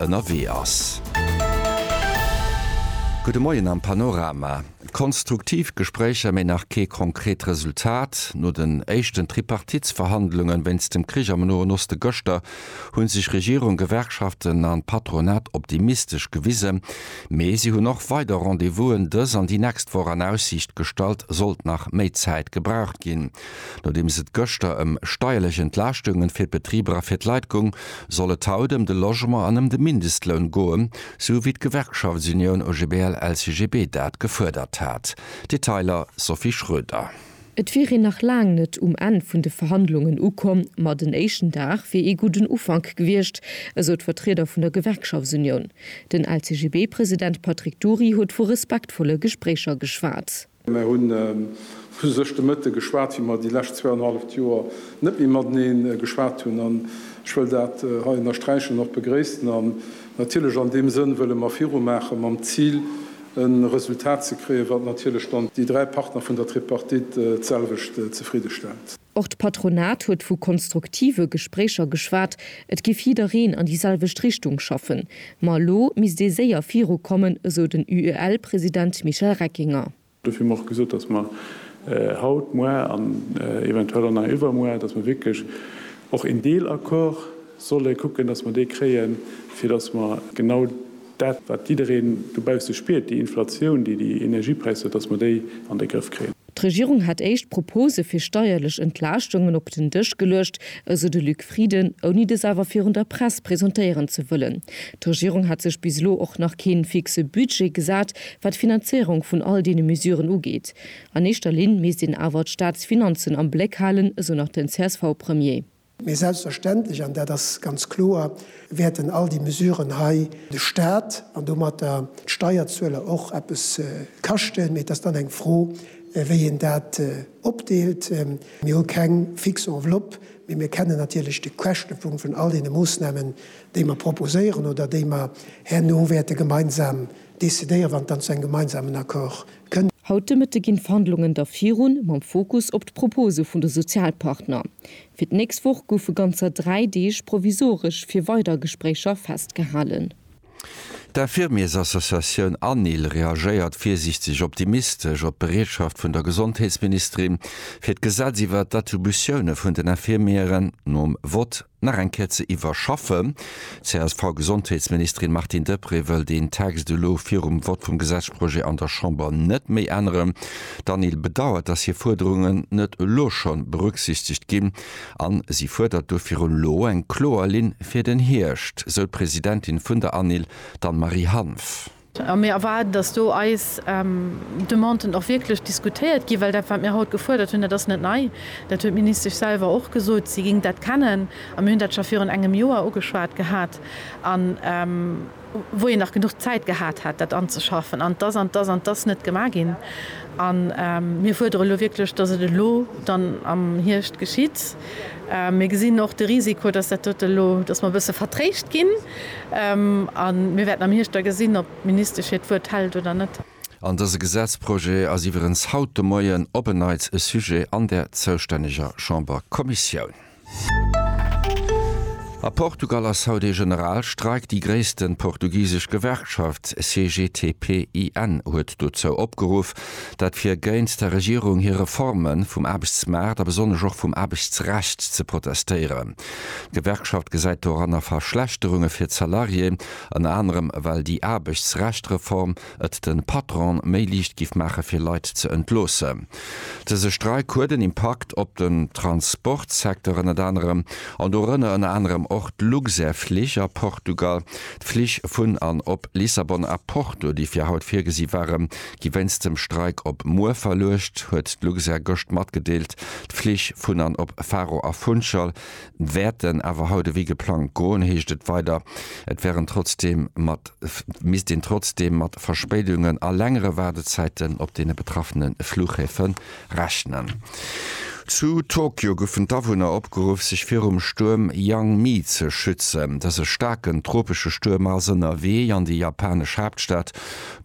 ënnerwee ass. Gudde Moien am Panorama. Konstruktiv Gespréicher, mee nach kee konkret Resultat. No den éischten Tripartitsverhandlunge wéinst dem Krich am Noen Oste gëschter hu sech Regierung, Gewerkschaften an Patronat optimistesch gewisen. Mee si hunn och weider Rendez-vousen dës an déi nächst Woch an Aussiicht gestallt, sollt nach méi Zäit gebraucht ginn. Nodeems et gëschter ëm steierlech Entlaaschtungen fir d'Betriber a fir d'Leit gung, soll et haut ëm de Logement an ëm de Mindestloun goen, sou wéi d'Gewerkschaftsunioun OGBL-LCGB dat gefuerdert hat. Detailer, Sophie Schroeder. Et wier een nach laang net um Enn vun de Verhandlungen ukomm, ma den éischten Dag wier ee gudden Ufank gewiescht, esou d'Vertrieder vun der Gewerkschaftsunioun. Den LCGB-President Patrick Dury huet vu respektvolle Gespréicher geschwat. Mer hunn u sech de Mëtte geschwat, wéi mer déi lescht zwee an e halleft Joer net méi mateneen geschwat hunn. An ech wëll dat hei ënnersträichen, och begréissen. An natierlech an deem Sënn wëlle mer virumaachen, mam Zil e Resultat ze kréien, wat natierlech dann déi dräi Partner vun der Tripartite d'selwecht zefridde stellt. Och d'Patronat huet vu konstruktive Gespréicher geschwat. Et géif jiddereen an déi selwecht Richtung schaffen. Ma elo misst ee séier virukommen, esou den UEL-President Michel Reckinger. Dofir hu mer och gesot, datt mer haut, muer an eventuell och nach iwwermuer, datt mer wierklech och een Deelaccord solle kucken, datt mer dee kréien, fir datt mer genau dat, wat jiddereen dobausse spiert, déi Inflatioun, déi déi Energiepräisser huet, datt mer déi an de Grëff kréien. D'Regierung hätt éischt Propose fir steierlech Entlaaschtungen op den Dësch geluecht, esou de Luc Frieden, ouni dës awer virun der Press presentéieren ze wëllen. D'Regierung hätt sech bis elo och nach kee fixe Budget gesat, wat d'Finanzéierung vun all deene Mesuren ugeet. An éischter Linn misst een awer d'Staatsfinanzen am Bléck halen, esou nach den CSV-Premier. Mee selbstverständlech, an dat ass ganz kloer, wäerten all déi Mesuren hei de Stat an domatter d'Steierzueler och eppes kaschten. Mee et ass dann eng Fro, wéi een dat opdeelt. Mir hu keng fix Enveloppe, mee mir kennen natierlech de Käschtepunkt vun all deene Moosnamen, déi mer proposéieren oder déi mer herno wäerte gemeinsam decidéieren, wann et dann zu engem gemeinsamen Accord Haut de Mëtte ginn d'Verhandlungen da virun, mam Fokus op d'Propose vun de Sozialpartner. Fir d'nächst Woch goufe ganzer dräi Deeg provisoresch fir weider Gespréicher festgehalen. D'Infirmiersassociatioun ANIL reagéiert virsiichteg optimistesch op d'Bereetschaft vun der Gesondheetsministerin, fir d'Gesetz iwwert d'Attributioune vun den Infirmieren nom Vott, nach eng Kéier ze iwwerschaffen. D'CSV-Gesondheetsministerin Martine Deprez wëll deen Text elo virum Vott vum Gesetzprojet an der Chamber net méi änneren. D'Anil bedauert, datt hir Fuerderungen net elo schonn berücksichtegt ginn an si fuerdert do virun elo eng kloer Linn fir den Hierscht, sou d'Presidentin vun der Anil, d'Anne-Marie Hanff. A mir erwaarden, dass do eis Demanden och wierklech diskutéiert ginn, well dat, wat mir haut gefuerdert hunn, dat ass net nei. Dat huet d'Ministesch selwer och gesot, si géing dat kennen. A mir hunn dat scho virun engem Joer ugeschwat gehat, wou een nach genuch Zäit gehat hätt, dat anzeschaffen. An et ass an et ass an et ass net gemaach ginn. A mir fuerdere elo wierklech, dass et elo dann am Hierscht geschitt. Mir gesinn och de Risiko, dass dat dote elo, dass mer e bësse vertréischt ginn. A mir wäerten am Hierscht da gesinn, ob d'Ministesch hiert Wuert hält oder net. An dëse Gesetzprojet ass iwwerens haut de Moien op en Neits e Sujet an der zoustänneger Chamberkommissioun. A Portugal ass haut ee Generalstreik. Déi gréisste portugisesch Gewerkschaft CGTP-IN huet dozou opgeruff, dat fir géint der Regierung hir Reforme vum Aarbechtsmaart a besonnesch och vum Aarbechtsrecht ze protestéieren. D'Gewerkschaft gesäit doranner Verschlechterunge fir d'Salarié, ënner anerem well déi Aarbechtsrechtreform et de Patronen méi liicht giff maache fir Leit ze entloossen. Dëse Streik huet en Impakt op den Transportsecteur ënnert anerem, an dorënner ënner anerem och d'Luxair-Flich a Portugal. D'Flich vun an op Lissabon a Porto, déi fir haut virgesi waren, gi wéinst dem Streik op muer verluecht, huet d'Luxair gëscht matgedeelt. D'Flich vun an op Faro a Funchal wäerten awer haut ewéi geplangt goen, heescht et weider. Et wär een trotzdeem mat misst een trotzdeem mat Verspéidungen a längere Waardezäiten op deene betraffene Flughäfe Rechnen. Zu Tokio goufen d'Awunner opgeruff, sech virum Stuerm Yangmi ze schützen. Dëse staarken tropesche Stuerm ass ënnerwee an déi japanesch Haaptstad.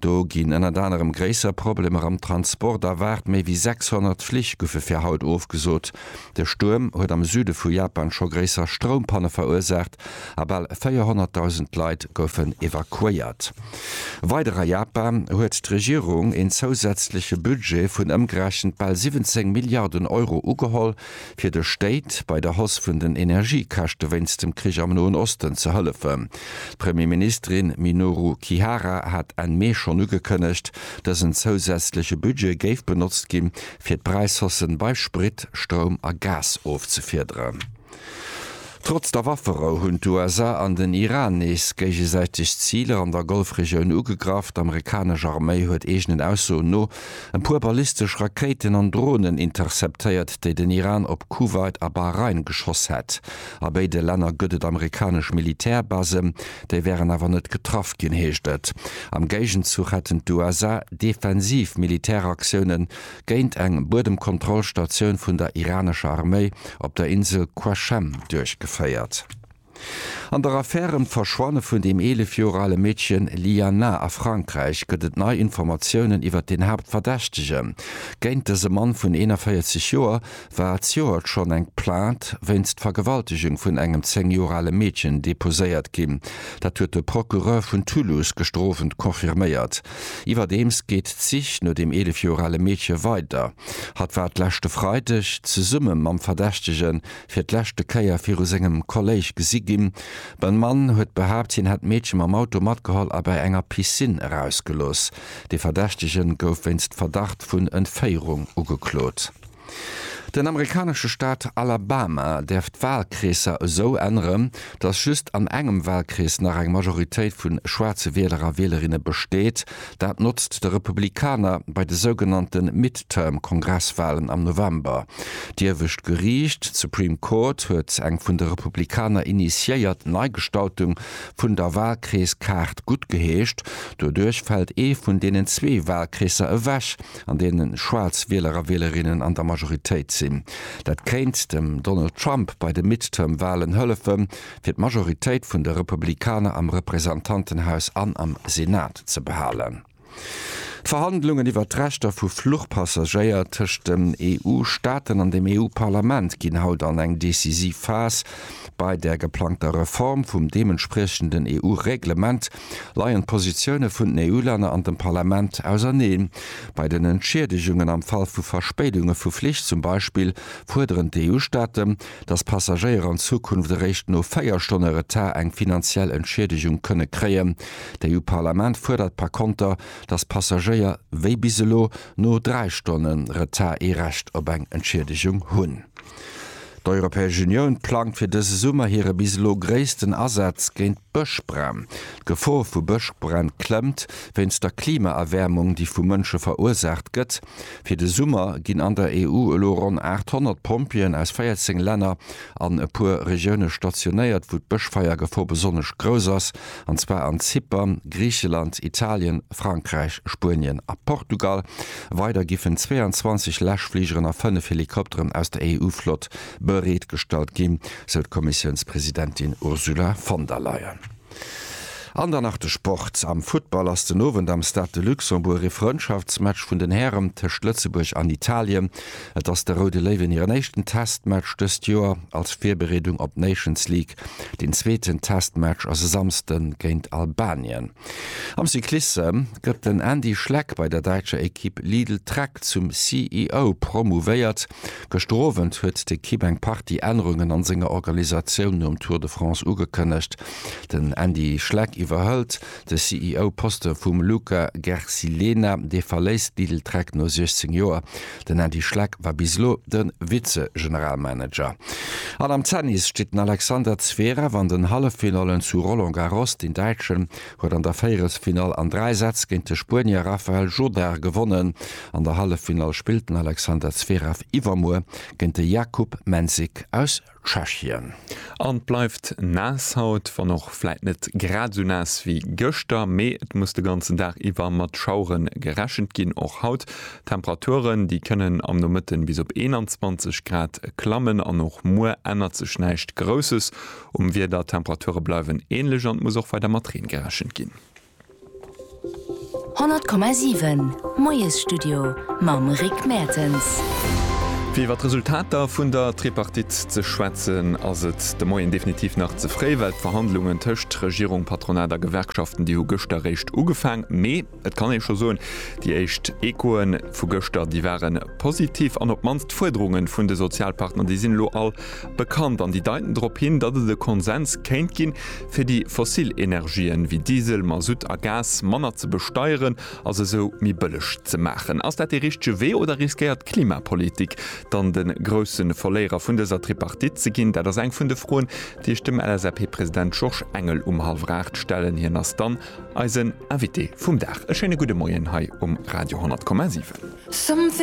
Do ginn ënnert anerem gréisser Problemer am Transport erwaart. Méi wéi 600 Flich goufe fir haut ofgesot. De Stuerm huet am Süde vu Japan scho gréisser Stroumpanne verursaacht a bal 400.000 Leit goufen evakuéiert. Weider a Japan huet d'Regierung een zousätzleche Budget vun ëmgerechent bal 17 Milliarden Euro ugeholl, fir de Stéit bei der Hausse vun den Energiekäschte wéinst dem Krich am Noen Osten ze hëllefen. D'Premierministerin Minoru Kihara hat Enn Mee schonn ugekënnegt, dësen zousätzleche Budget géif benotzt gi fir d'Präishaussen bei Sprit, Stroum a Gas ofzefiederen. Trotz der Wafferou hunn d'USA an den Iran nees géigesäiteg Ziler an der Golfregioun ugegraff. D'Amerikanesch Arméi huet eegenen Aussoen no e puer ballistesch Rakéiten an Dronen interceptéiert, déi den Iran op Kuwait a Bahrain geschoss hätt. A béide Länner gëtt et amerikanesch Militärbasen. Déi wären awer net getraff ginn, heescht et. Am Géigenzuch hätten d'USA defensiv Militäraktiounen géint eng Buedemkontrollstatioun vun der iranescher Arméi op der Insel Qashem duerchgeféiert. An der Affär ëm d'Verschwanne vun dem 11 Joer ale Meedchen Liana a Frankräich gëtt et nei Informatiounen iwwert den Haaptverdächtegen. Géint dëse Mann vun 41 Joer war d'Joert schonn eng Plainte wéinst Vergewaltegung vun engem 10 Joer ale Meedchen deposéiert ginn. Dat huet de Procureur vun Toulouse gestrofend confirméiert. Iwwerdeems geet d'Sich no dem 11 Joer ale Meedche weider. Hatt war d'leschte Freideg zesumme mam Verdächtege fir d'leschte Kéier viru sengem Kolléisch gesi ginn. De Mann huet behaapt, hien hätt d'Meedche mam Auto matgeholl a bei enger Piscine erausgelooss. De Verdächtege gouf wéinst Verdacht vun Entféierung ugeklot. Den amerikanesche Staat Alabama däerf d'Walkreesser esou änneren, datt just an engem Walkrees nach eng Majoritéit vu schwaarze Wieler a Wielerinne besteet. Dat notzt de Republikaner bei de sougenannte Midterm-Kongresswalen am November. D'Iewescht Geriicht, d'Supreme Court, huet eng vun de Republikaner initiéiert Neigestaltung vun der Walkreeskaart guttgeheescht. Doduerch fält ee vun deenen zwee Walkreesser ewech, an deene schwaarz Wieler a Wielerinnen an der Majoritéit sinn. Dat kéint dem Donald Trump bei de Midterm-Walen hëllefe fir d'Majoritéit vun de Republikaner am Representantenhaus an am Senat ze behalen. D'Verhandlungen iwwer d'Rechter vu Fluchpassagéier tëscht den EU-Staaten an dem EU-Parlament ginn haut an eng decisiv Phas. Bei der geplangter Reform vum deementspriechenden EU-Reglement, Leien d'Positioune vun den EU-Länner an dem Parlament auserneen? Bei den Entschiedegungen am Fall vu Verspéidunge vu Flich zum Beispill fuerderen d'EU-Staaten, datt Passagéier an Zukunft eréischt no 4 Stonne Retard eng finanziell Entschiedegung kënne kréien. D'EU-Parlament fuerdert par konter, datt Passagéier, wéi bis elo, no 3 Stonne Retard ee Recht op eng Entschiedegung hunn. D'Europäesch Unioun plangt fir dëse Summer hire bis elo gréissten Asaz géint Bëschbränn. D'Gefor vu Bëschbränn klëmmt wéinst der Klimaerwäermung, déi vu Mënsche verursaacht gëtt. Fir de Summer ginn an der EU elo ronn 800 Pompjeeën aus 14 Länner an e puer Regioune stationéiert, wou d'Bëschfeiergefor besonnesch grouss ass, an zwar an Zypern, Griicheland, Italien, Frankräich, Spuenien a Portugal. Weider giffen 22 Läschfligeren a 5 Helikopteren aus der EU-Flott bereetgestallt ginn, sou d'Kommissiounspresidentin Ursula von der Leyen. An dann nach de Sport. Am Futtball ass den Owend am Stade de Luxembourg ee Frëndschaftsmatch vun den Hären tëscht Lëtzebuerg an Italien. Et ass de Roude Léiwen hiren éischten Testmatch dëst Joer als Virbereedung op d'Nations League Deen zweeten Testmatch ass e Samsde géint Albanien. Am Cyclisse gëtt den Andy Schleck bei der däitscher Ekipp Lidl Trek zum CEO promouvéiert. Gëschter Owend huet d'Ekipp eng Partie Ännerungen an senger Organisatioun nom Tour de France ugekënnegt. Den Andy Schleck iwwerhëlt de CEO-Poste vum Luca Gersilena. Dee verléisst Lidl Trek no 16 Joer. Den Ady Schleck war bis elo de Vize-Generalmanager. An am Zennis steet den Alexander Zverev an den Halleffinallen zu Roland Garros. Den Däitschen huet an der Véierelsfinall an dräi Sätz géint de Spuenier Rafael Jodar gewonnen. An der Halleffinall spillt den Alexander Zverev iwwermuer géint de Jakub Mensik aus Tschechien. An et bleift naass haut, wann och vläit net grad esou naass wéi gëschter, mee et muss de ganzen Dag iwwer mat Schauere gerechent ginn, och haut. Temperaturen, déi kënnen am Nomëtten bis op 21 Grad klammen an och muer ännert sech näischt Grousses um Wieder. D'Temperature bleiwen änlech an et muss och weider mat Reen gerechent ginn. 100,7 Moiesstudio mam Rick Mertens. Fir iwwer d'Resultater vun der Tripartite ze schwätzen, ass et de Moien definitiv nach ze fréi, well d'Verhandlungen tëscht Regierung, Patronat a Gewerkschaften, déi hu gëschter réischt ugefaang. Mee et kann ee scho soen, déi éischt Echoe vu gëschter, déi ware positiv an op d'mannst d'Fuerderunge vun de Sozialpartner, déi sinn elo all bekannt an déi deiten drop hin, datt et e Konsens kéint ginn, fir déi fossil Energien, wéi Diesel, Masutt a Gas, manner ze besteieren a se esou méi bëlleg ze maachen. Ass dat dee richtege Wee oder riskéiert d'Klimapolitik dann de grousse Verléierer vun dëser Tripartite ze ginn? Dat ass eng vun de Froen, déi ech dem LSAP-President Georges Engel um hallwer aacht stellen. Hien ass dann eisen Invité vum Dag. E schéine gudde Moien hei um Radio 10,7.